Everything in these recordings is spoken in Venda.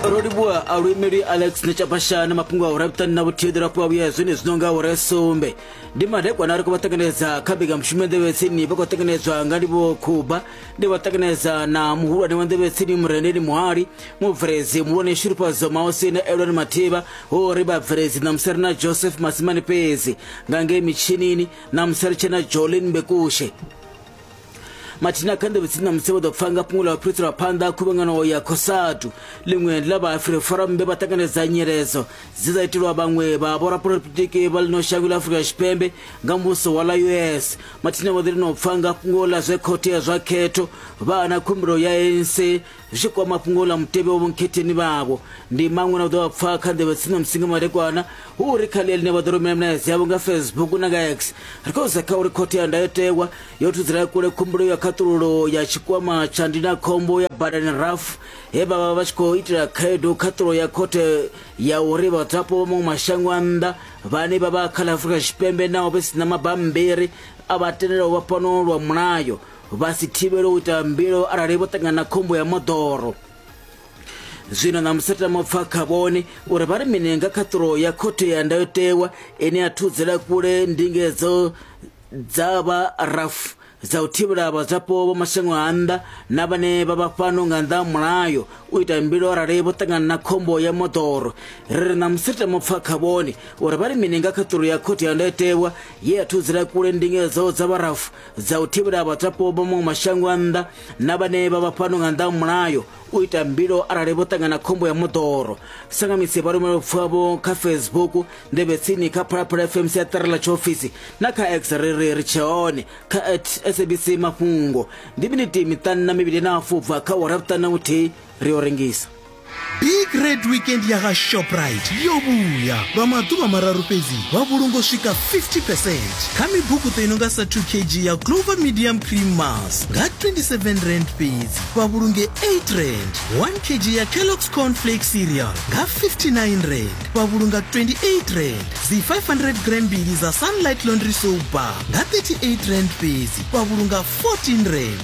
ro livhuwa a luimeli alex nechapashani mafhungo a u rabutani na vhuthihi ḓira fhiwa vhuya zwine zwi nonga ure sumbe ndi madekwana ri khou vha ṱanganedza kha mbekanyamushumo nḓevhetsini vha khou ṱanganedzwa nga livho khuba ndi vha ṱanganedza na muhulwane wa nḓevhetsini murendeni muhali mubveledzi muhulwane shurufhadzo maosi na eloni mathivha ho ri vhabveledzi ṋamusi ri na joseph masimani fhedzi nga ngei mitshinini ṋamusi ri tshe na jolin bekushe mathina kha ndebe tsini na musi vha ḓo pfa nga fhungo ḽa vhaphiriso lwa phanḓa khuvhangano ya khosatu ḽiṅwe ḽa vhaafrika forum vhe vha ṱanganedza nyeledzo dze dza itelwa vhaṅwe vha vhorapolotiki vha ḽino shango ḽa afurika tshipembe nga muvhuso wa ḽa us mathina vha ḓo lino pfa nga fhungo ḽa zwe khothe ya zwa khetho vha ana khumbelo ya anc Zwi tshi kwama fhungo ḽa mutevhe wa vhonkhetheni vhavho, ndi maṅwe na u ḓo vha pfa kha nḓevhe tsini na musinga madekwana hu uri kha ḽia ḽine vha ḓo rumela milaedza yavho nga Facebook na nga X. Ri khou sedza kha uri Khothe ya Ndayotewa yo thudzela kule khumbelo ya khaṱululo ya tshikwama tsha ndindakhombo ya badani RAF he vha vha vha tshi khou itela khaedu khaṱululo ya khothe ya uri vhadzulapo vha maṅwe mashango a nnḓa vhane vha vha kha ḽa Afrika Tshipembe naho vhe si na mabammbiri a vha tendelaho vha fhano lwa mulayo vha si thivhele u ita mbilaelo arali vho ṱangana na khombo ya moḓoro zwino na musatama pfa kha vhone uri vha ri mini nga khaṱulo ya khothe ya ndayotewa ine ya thudzela kule ndingedzo dza vha rafu dza u thivhela vhadzwapo vha mashango a nnḓa na vhane vha vha fhano nga nnḓa mulayo u ita mbilo arali vho ṱangana na khombo ya moḓoro ri ri na musita mupfa kha vhone uri vha ri mini nga khaṱulo ya khothe ya ndayotewa ye ya thudzela kule ndingedzo dza vharafu dza u thivhela vhadzwapo vha maṅwe mashango a nnḓa na vhane vha vha fhano nga nnḓa mulayo u ita mbilo arali vho ṱangana khombo ya moḓoro sangamisi vha rumela vhapfuvhavho kha facebook ndevhe tsini kha phalaphala fm siaṱari ḽa tshiofisi na kha x ri ri ri tshe hone kha at sabc mafhungo ndi miniti miṱanu na mivhili na afubva kha wara vhuṱanu na vhuthihi ri yo rengisa big red weekend ya ga shoprite yo vhuya lwa maḓuvha mararu fhedzi vha vhulungo swika 50 percent kha mibukuṱo i no nga sa 2 kg ya clover medium cream mas nga 27 rand fhedzi vha vhulunge 8 rand 1 kg ya kellox cornflake cereal nga 59 rand vha vhulunga 28 rand dzi 500 gram mbili za sunlight laundry soap bar nga 38 rand fhedzi vha vhulunga 14 rand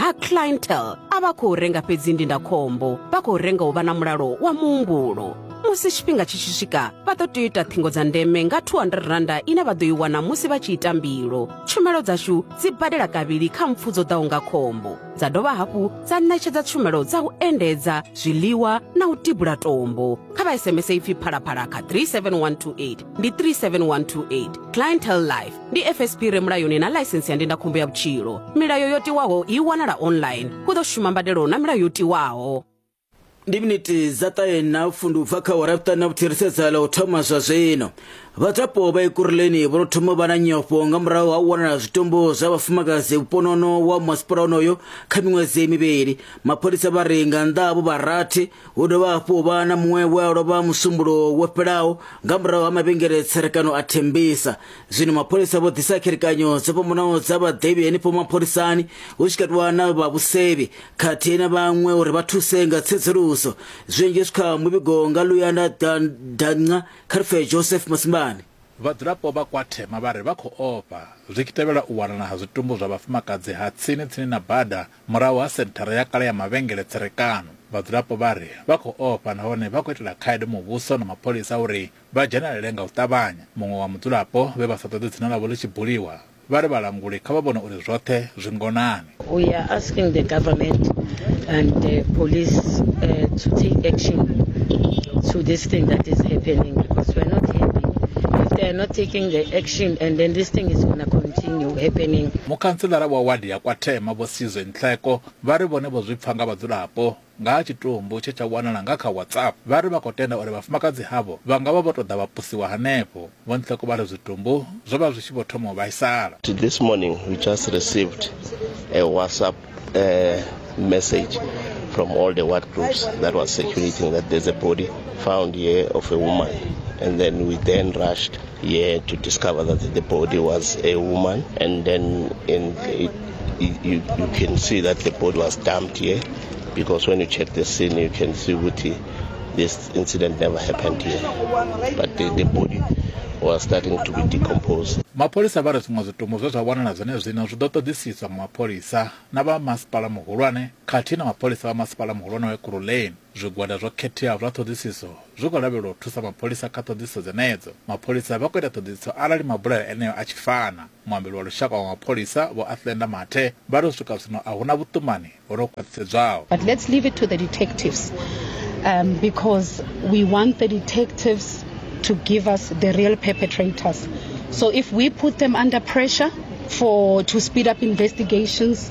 ha clientele a vha khou renga fhedzi ndindakhombo vha khou renga u vha na mulalo wa muhumbulo musi tshifhinga tshi tshi swika vha ḓo tea u ita ṱhingo dza ndeme nga 200 randa ine vha ḓo i wana musi vha tshi ita mbilo tshumelo dzashu dzi badela kavhili kha mpfu dzo ḓaho nga khombo dza dovha hafhu dza ṋetshedza tshumelo dza u endedza zwiḽiwa na u tibula tombo kha vha sms ipfi phalaphala kha 37128 ndi 37128 clientele life ndi fsp re mulayoni na ḽaisensi ya ndindakhombo ya vhutshilo milayo yo tiwaho i wanala online hu ḓo shuma mbadelo na milayo yo tiwaho ndi miniti dza ṱahe na pfundu u bva kha awara vhuṱanu na vhuthirisedza ḽa u thoma zwa zwino vhadzwapo vha ikuruleni vho no thoma vha na nyofho nga murahu ha u wanala zwitumbu zwa vhafumakadzi vhuponono wa masipala onoyo kha miṅwedzi mivhili mapholisa vha ri nga nnḓa havho vha rathi hu dovha hafhu vha na muṅwe we a lovha musumbulo wo fhelaho nga murahu ha mavhengele tserekano a thembisa zwino mapholisa vho ḓisa kherekanyo dzo fhambanaho dza vhaḓivhi henefho mapholisani hu tshi katiwa na vha vhusevhi khathihi na vhaṅwe uri vha thuse nga tsedzuluso zwinzhi zwi kha muvhigo nga luyanda danca kha rife joseph masimbani Vhadzulapo vha Kwathema vha ri vha khou ofha zwi tshi tevhela u wanala ha zwitumbu zwa vhafumakadzi ha tsini tsini na bada murahu ha senthara ya kale ya mavhengele tserekano. Vhadzulapo vha ri vha khou ofha nahone vha khou itela khaedu muvhuso na mapholisa uri vha dzhenelele nga u ṱavhanya. Muṅwe wa mudzulapo vhe vha sa ṱoḓe dzina ḽavho ḽi tshi buliwa vha ri vhalanguli kha vha vhone uri zwoṱhe zwi ngonani. We are asking the government and the police uh, to take action to this thing that is happening because we are not happy if they are not taking the action and then this thing is going to continue happening. Mukhantselara wa wadi ya Kwathema vho Sizwe Nhleko vha ri vhone vho zwi pfa nga vhadzulapo nga ha tshitumbu tshe tsha wanala nga kha WhatsApp, vha ri vha khou tenda uri vhafumakadzi havho vha nga vha vho tou ḓa vha pusiwa hanefho. Vho Nhloko vha ri zwitumbu zwo vha zwi tshi vho thoma u vhaisala. This morning we just received a WhatsApp message from all the ward groups that was circulating that there's a body found here of a woman and then we then rushed here to discover that the body was a woman and then in it You, you, you can see that the body was dumped here because when you check the scene, you can see Guti. This incident never happened here, but the, the body was starting to be decomposed. mapholisa vha ri zwiṅwe zwitumbu zwe zwa wanala zwenezwino zwi ḓo ṱoḓisiswa nga mapholisa na vha masipala muhulwane khathihi na mapholisa vha masipala muhulwane wa ekurhuleni Zwigwada zwo khetheaho zwa ṱhoḓisiso zwi khou lavhelelwa u thusa mapholisa kha ṱhoḓisiso dzenedzo. Mapholisa vha khou ita ṱhoḓisiso arali mabulayo eneo a tshi fana. Muambeli wa lushaka wa mapholisa, Vho Athlenda Mathe, vha ri u swika zwino a hu na vhuṱumani ho no khwaṱhisedzwaho. But let's leave it to the detectives um, because we want the detectives to give us the real perpetrators. So if we put them under pressure for to speed up investigations,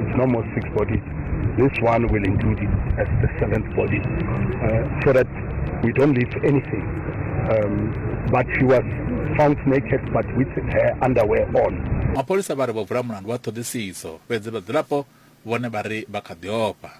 It's no more six bodies. This one will include it as the seventh body uh, so that we don't leave anything. Um, but she was found naked but with her underwear on. mapholisa vha ri vho vula mulandu wa ṱhoḓisiso fhedzi vhadzulapo vhone vha ri vha kha ḓi ofha